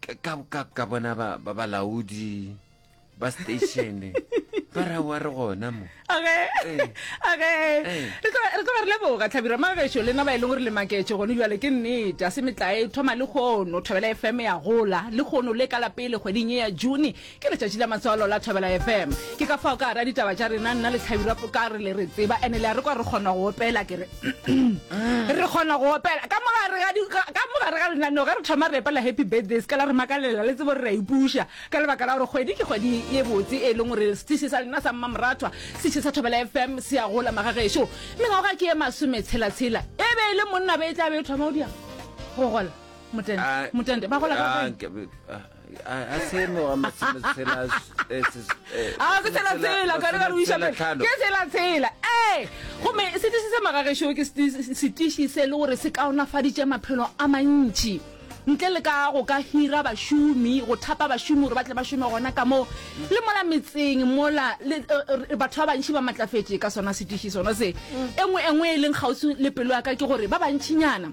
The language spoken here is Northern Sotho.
ka ka ka bona ba ba balaodi ba station ba ra wa re gona mo age Eh. age Eh. re tlo re tlo re leboga tlhabira magešo le na ba e leng gore le maketše gone jale ke nnete a se metlae thoma le kgono thobela fm ya gola le kgono le ka lapele kgweding e ya june Ke letšatši la matswalo la Thobela FM. Ke ka fao ka ra ditaba tša rena nna le Tlhabira ka re le re tseba ene le a re kwa re kgona go opela ke re re kgona go opela ka mogare ga di- ga- ka mogare ga lenaneo ge re thoma re epela happy birthday se ka la re makalela le tsebo re ra ipuša ka lebaka la gore kgwedi ke kgwedi ye botse e leng gore setiši sa lena sa mmamorathwa setiši sa Thobela FM se a gola magagešo mengwago ga ke ye masome tshelatshela e be e le monna be e tla be e thoma o dia go gola motende Ah, motende ba gola ka ah, kae? ke- ah, gomme setiši se magagešo ke setiši se le gore se kaonafaditše maphelo a mantši ntle le ka go ka hira bašomi go thapa bašomi gore ba tle ba šome gona ka moo le mola metseng mola eh, eh, batho ba bantšhi ba matlafetše ka sona setiši sona se engwe engwe e leng kgauswi le pelo ya ka ke gore ba bantšhinyana